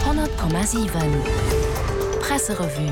100,7 Presserevue.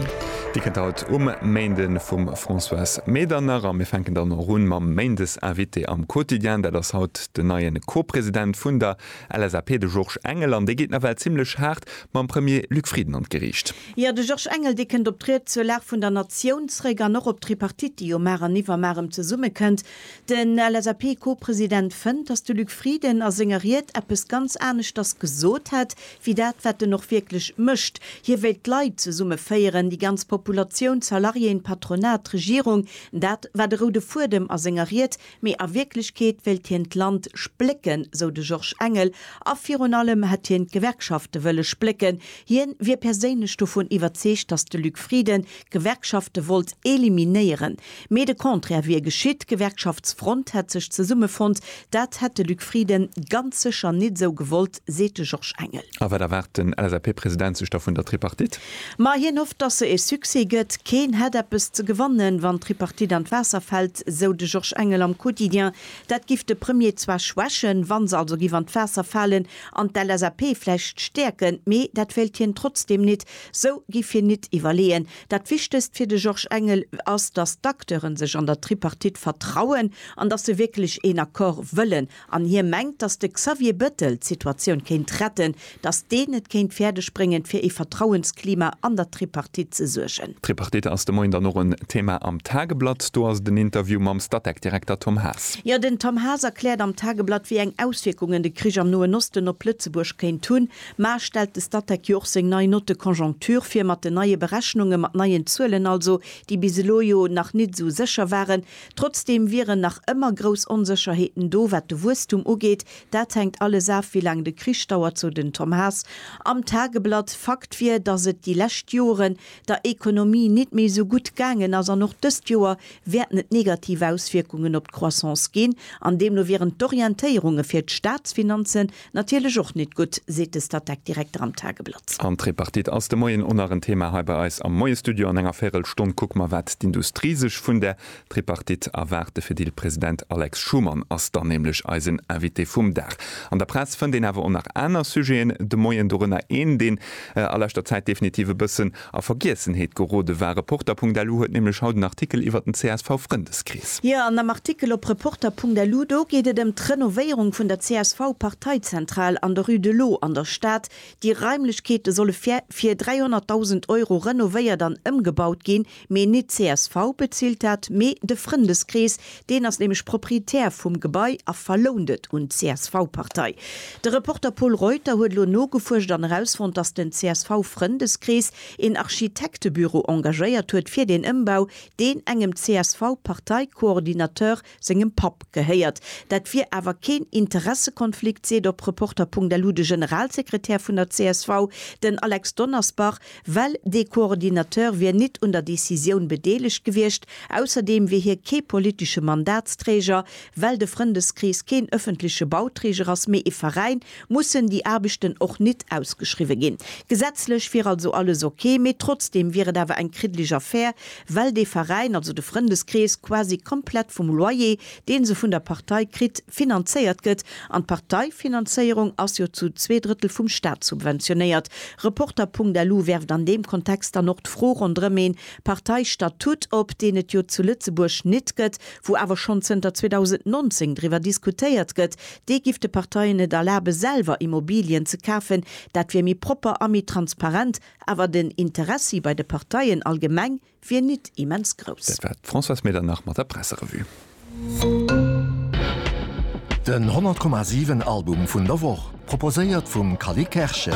Dir kënnt haut um Méinde vum Françoise Medernach a mir fänken dann och un mam Méindesinvité am Quotidien. Dat ass haut den neie Co-President vun der LSAP, de Georges Engel, an dee geet nawell zimmlech haart mam Premier Luc Frieden an d'Geriicht. Jo, de Georges Engel, dee kënnt op d'Ried zur Lag vun der Natioun zréck an och op d'Tripartite, déi jo mar an iwwermar erëm zesummekënnt. Den LSAP-Co-President fënnt, datt de Luc Frieden a senger Ried eppes ganz aneschters gesot hätt, wéi dat, wat en och wierklech mécht. Hie wéilt d'Leit zesummeféieren, déi ganz Populatioun, d'Salariéen, d'Patronat, d'Regierung. Dat war de roude Fuedem a senger Ried. Mee a Wierklechkeet wéilt hien d'Land splécken, sou de Georges Engel. A virun allem hätt hien d'Gewerkschafte wëlle splécken. Hien wier perséinlech dovun iwwerzeegt, datt de Luc Frieden d'Gewerkschafte wollt eliminéieren. Mee de Contraire wier geschitt, d'Gewerkschaftsfront hätt sech zesummefonnt. Dat hätt de Luc Frieden ganz sécher nit esou gewollt, seet de Georges Engel. A wat erwaart den LSAP-President sech da vun der Tripartite? Ma hien hofft, datt se ee Succès gëtt. Keen hätt eppes ze gewannen, wann d'Tripartite an d'Waasser fält, sou de Georges Engel am Quotidien. Dat giff de Premier zwar schwächen, wa se also giff an d'Waasser falen, an d'LSAP vläicht stäerken, mee dat wéilt hien trotzdeem nit. Sou giff hien nit iwwerleeën, Dat Wichtegst fir de Georges Engel ass, datt d'Acteure sech an der Tripartite vertrauen an datt se wierklech een Accord wëllen. An hie mengt, datt de Xavier Bettel d'Situatioun kéint retten, datt deen et kéint fäerdeg bréngen, fir ee Vertrauensklima an der Tripartite ze suergen. D'Tripartite ass de Moien dann och en Thema am Tageblatt. Do ass et en Interview mam Statec-Direkter Tom Haas. Jo, den Tom Haas erkläert am Tageblatt, wéi eng Auswierkungen de Krich am Noen Osten op Lëtzebuerg kéint hunn. Mar stellt de Statec jo och seng nei Note de conjoncture vir, mat den neie Berechnunge, mat neien Zuelen also, déi bis elo jo nach nit esou sécher waren. Trotzdeem wieren nach ëmmer grouss Onsécherheeten do, wat de Wuesstum ugeet. Dat hänkt alles af, wéi laang de Krich dauert, sou den Tom Haas am Tageblatt. Fakt wier, datt et déi lescht Joren der Ekonomie nit méi esou gutt gaangen ass an och dëst Joer wäerten et negativ Auswierkungen op d'Croissance ginn an deemno wieren d'Orientéierunge fir d'Staatsfinanzen Natierlech och nit gutt, seet de Statec-Direkter am Tageblatt. An d'Tripartite ass de Moien o nach en Thema hei bei eis am Moiestudio. An enger Véirelstonn kucke mer, wat d'Industrie sech vun der Tripartite erwaart. De Fedil-President Alex Schumann ass dann nämlech eisen Invité vum Dag. An der Press fënnt een awer o nach aner Sujeten de Moien, dorënner een, deen a leschter Zäit definitiv e bëssen A Vergiessenheet gerode war. Reporter.lu huet nämlech haut en Artikel iwwert den CSV-Frëndeskrees. Jo, an am Artikel op Reporter.lu, do geet et ëm d'Renovéierung vun der CSV-Parteizentral an der Rue de l'Eau an der Stad. Déi Raimlechkeete solle fir 300.000 Euro renovéiert an ëmgebaut ginn. Mee nit d'CSV bezilt dat, mee de Frëndeskrees, Deen ass nämlech Proprietär vum Gebai a verlount et un d'CSV-Partei. De Reporter Pol Reuter huet elo nogefuerscht an erausfonnt, dass den CSV-Frëndeskrees een Architektebüro engagéiert huet fir deen Ëmbau, deen engem CSV-Parteikoordinateur sengem Papp gehéiert. Dat wier awer keen Interessekonflikt, seet op Reporter.lu de Generalsekretär vun der csv, den Alex Donnersbach. well dee Coordinateur wier nit un der Décisioun bedeelegt gewiescht, ausserdeem wier hie kee politesche Mandatsträger, well de Frëndeskrees keen ëffentleche Bauträger ass, mee e Veräin, mussen déi Aarbechten och nit ausgeschriwwe ginn. Gesetzlech wier also alles ok, mee trotzdeem wier et awer eng kriddlech Affär, well dee Veräin, also de Frëndeskrees, quasi komplett vum Loyer deen se vun der Partei kritt, finanzéiert gëtt, an d'Parteifinanzéierung ass jo zu zwee Drëttel vum Staat subventionéiert. Reporter.lu werft an deem Kontext dann och d'Fro ronderëm ee Parteistatut op, deen et jo zu Lëtzebuerg nit gëtt, wou awer schonn zënter 2019 driwwer diskutéiert gëtt. Dee giff de Parteien et erlabe selwer Immobilien ze kafen, dat wier méi propper a méi transparent, awer den Interessi bei de Parteien allgemeng, wier nit immens grouss. Dat war d'Françoise Medernach mat der Presserevue. Den 100,7 Album vun der Woch, proposéiert vum Cally Kerschen.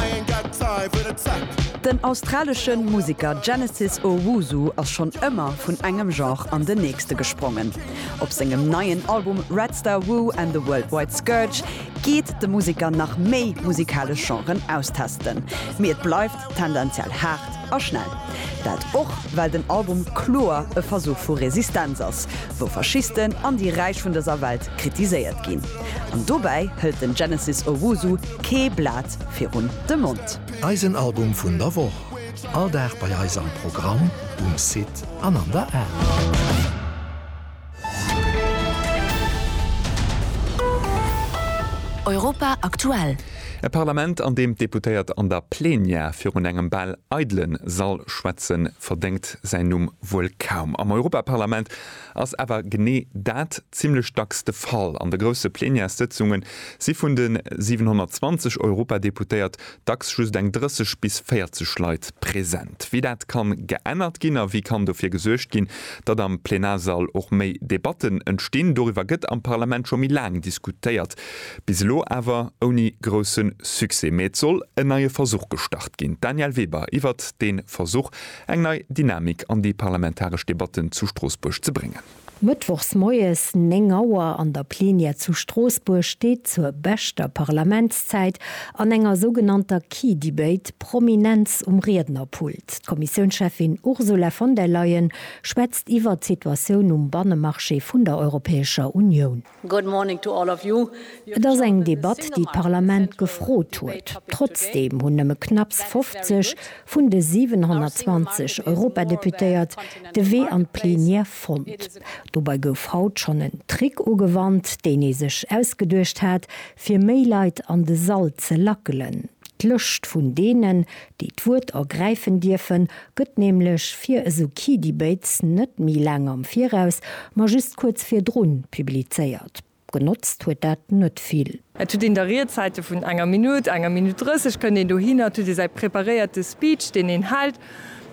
Den australesche Museker Genesis Owusu ass schonn ëmmer vun engem Genre an den nächste gesprongen. Op sengem neien Album Red Star Woo and the World Wide Scourge geet de Museker nach méi musikalesch Genren austesten. Mee et bleift tendenziell haart a schnell. Dat och well den Album kloer e Versuch vu Resistenz ass, wou Faschisten an déi Räich vun dëser Welt kritiséiert ginn. An dobäi hëlt den Genesis Owusu kee Blat virun de Mond. Eisen Album vun der Woch, all Dag bei eis am Programm, um Site an an der App. Europa aktuell. E Parlament, an deem d'Deputéiert an der Plenière virun engem bal eidelen Sall schwätzen, verdéngt säin Numm wuel kaum. Am Europaparlament ass awer genee dat zimlech dacks de Fall. An de grousse Plenièrssëtzunge si vun de 720 Europadeputéiert Dacks just eng 30 bis 40 Leit present. Wéi dat kann geännert ginn a wéi kann dofir gesuergt ginn, datt am Plenarsall och méi Debatten entstinn, doriwwer gëtt am Parlament scho méi laang diskutéiert. Bis elo awer ouni grousse Succès. Mee et soll en neie Versuch gestart ginn. D'Danièle Weber iwwert dee Versuch, eng nei Dynamik an déi parlamentaresch Debatten zu Stroossbuerg ze bréngen. Mëttwochs moies 9 Auer an der Plenière zu Stroossbuerg steet zur beschter Parlamentszäit an enger sougenannter Key Debate Prominenz um Riednerpult. D'Kommissiounscheffin Ursula von der Leyen schwätzt iwwert d'Situatioun um Bannemarché vun der Europäescher Unioun. Et ass eng Debatt, déi d'Parlament gefrot huet. Trotzdeem hunn nëmme knapps 50 vun de 720 Europadeputéiert de Wee an d'Plenière fonnt. Dobei gouf haut schonn en Trick ugewannt, deen ee sech ausgeduecht hat, fir méi Leit an de Sall ze lackelen. D'Lëscht vun deenen, déi d'Wuert ergräifen dierfen, gëtt nämlech fir esou Key Debates net méi laang am Viraus, ma just kuerz virdrun publizéiert. Genotzt huet dat net vill. Et huet een da Riedzäite vun enger Minutt, enger Minutt 30 kënnt een dohinner, et huet ee säi preparéierte Speech, deen een hält,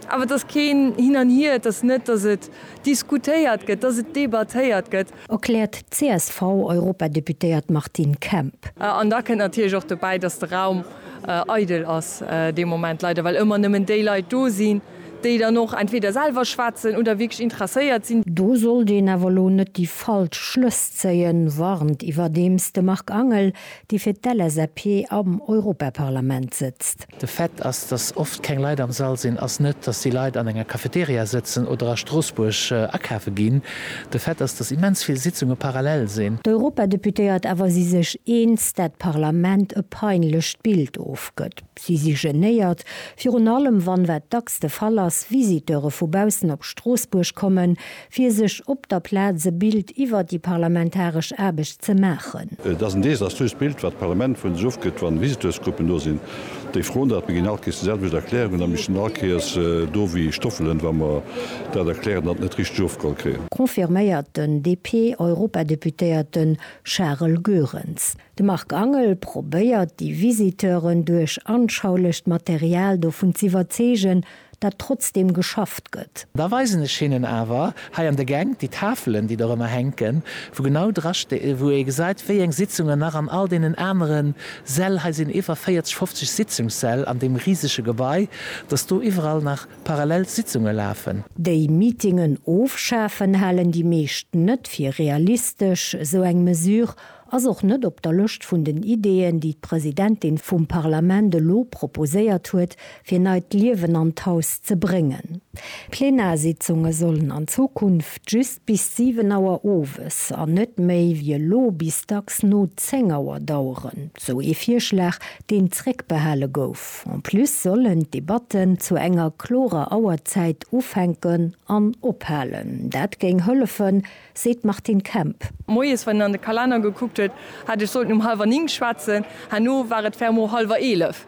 awer et ass keen Hin an Hier, et ass net, datt et diskutéiert gëtt, datt et debattéiert gëtt. Erkläert d'CSV-Europadeputéiert Martine Kemp. An da kënnt natierlech och dobäi, datt de Raum eidel ass dee Moment, leider, well ëmmer nëmmen déi Leit do sinn, déi dann och entweder selwer schwätzen oder wierklech interesséiert sinn. Do sollt een awer elo net déi falsch Schlëss zéien, warnt iwwerdeems de Marc Angel. déi fir d'LSAP am Europaparlament sëtzt. De Fait ass, datt oft keng Leit am Sall sinn, ass net, datt déi Leit an enger Cafeteria sëtzen oder a Stroossbuerg akafe ginn. De Fait ass, datt immens vill Sitzunge parallel sinn. D'Europadeputéiert awer si sech eens, dat d'Parlament e peinlecht Bild ofgëtt. Si si genéiert, virun allem wann, wat dacks de Fall ass, Visiteure vu baussen op Stroossbuerg kommen, fir sech op der Plaz e Bild iwwer déi parlamentaresch Aarbecht ze maachen. Et ass en desaströst Bild, wat d'Parlament vun sech ofgëtt, wann Visiteursgruppen do sinn, déi froen dat. Mir ginn all Kees déi selwecht Erklärungen a mir stinn all Kees do wéi Stoffelen, wa mer dat erklären an et net richteg ofgeholl kréien. Confirméiert den DP-Europadeputéierte Charel Goerens. De Marc Angel probéiert déi Visiteuren duerch anschaulecht Material dovun z'iwwerzeegen, dat trotzdem geschafft gëtt. Da weisen ech hinnen awer hei an de Gäng déi Tafelen, déi do rëmmer hänken, wou genau dra sti-, wou ee gesäit, wéi eng Sitzungen nach an all deenen anere Säll, hei sinn iwwer 40, 50 Sitzungssäll an deem risege Gebai, dass do iwwerall nach parallel Sitzunge lafen. Déi Meetingen ofschafen halen déi meescht net fir realistesch, esou eng Mesure Ass och net op der Lëscht vun den Ideeën, déi d'Presidentin vum Parlament elo proposéiert huet, fir neit Liewen an d'Haus ze bréngen. D'Plenarsitzunge sollen an Zukunft just bis 7 Auer owes an net méi wéi elo bis dacks no 10 Auer daueren, sou ee Virschlag, deen zréckbehale gouf. En plus sollen d'Debatten zu enger klorer Auerzäit ufänken an ophalen. Dat géing hëllefen, seet d'Martine Kemp. Moies, wann een an de Kalenner gekuckt huet, hätt ech sollten um hallwer Nink schwätzen. Herno war et fermement hallwer Eelef,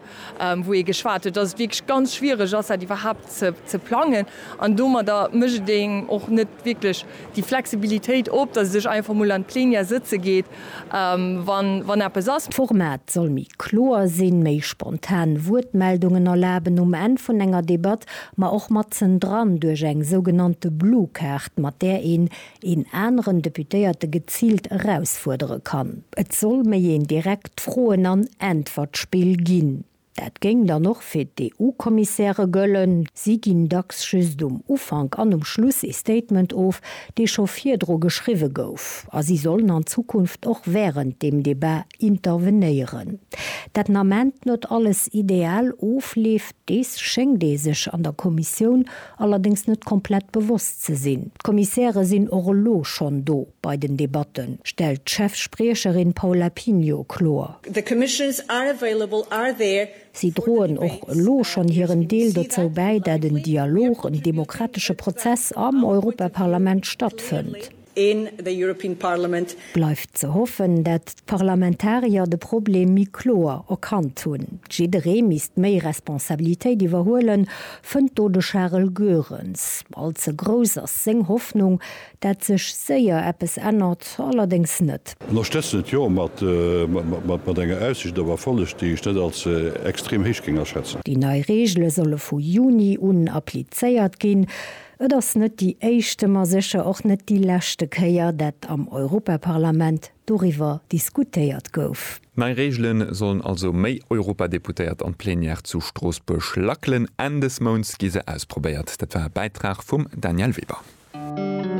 wou ee geschwat huet, dass et wierklech ganz schwiereg ass, dat iwwerhaapt ze plangen. An domadder mécht et engem och net wierklech déi Flexibilitéit op, dass ee sech einfach mol an d'Plenière sëtze geet wann eppes ass. D'Format soll méi kloer sinn, méi spontan Wuertmeldungen erlaben um Enn vun enger Debatt, ma och matzen dran duerch eng sougenannte Blue Kaart, mat där een een aneren Deputéierte geziilt erausfuerdere kann. Et soll méi een direkt Froen an Äntwertspill ginn. Dat géing dann och fir d'EU-Kommissäre gëllen. Si ginn dacks just um Ufank an um Schluss ee Statement of, dee scho virdru geschriwwe gouf. A si sollen an Zukunft och wärend deem Debat intervenéieren. Dat Nament net alles ideal ofleeft, dees schéngt ee sech an der Kommissioun allerdéngs net komplett bewosst ze sinn. D'Kommissäre sinn och elo schonn do bei den Debatten, stellt d'Chef-Spriecherin Paula Pinho kloer. The commissions are available, are there. Si droen och elo schonn hiren Deel dozou bäi, dat en Dialog, en demokratesche Prozess am Europaparlament stattfënnt. in the European Parliament. Bleift ze hoffen, dat d'Parlamentarier de Problem méi kloer erkannt hunn. Jidderee misst méi Responsabilitéit iwwerhuelen, fënnt do de Charel Goerens. All ze grouss ass seng Hoffnung, dat sech séier eppes ännert, allerdéngs net. Ënnerstëtzen et jo, mat enger Aussicht op Erfolleg, déi ech net als extrem héich géing aschätzen. Déi nei Reegele solle vu Juni un applizéiert ginn. Et ass net déi éischte, ma sécher och net déi leschte Kéier, dat am Europaparlament doriwwer diskutéiert gouf. Nei Reegele sollen also méi Europadeputéiert an d'Plenière zu Stroossbuerg lackelen. Enn des Mounts gi se ausprobéiert. Dat war e Bäitrag vum Danièle Weber.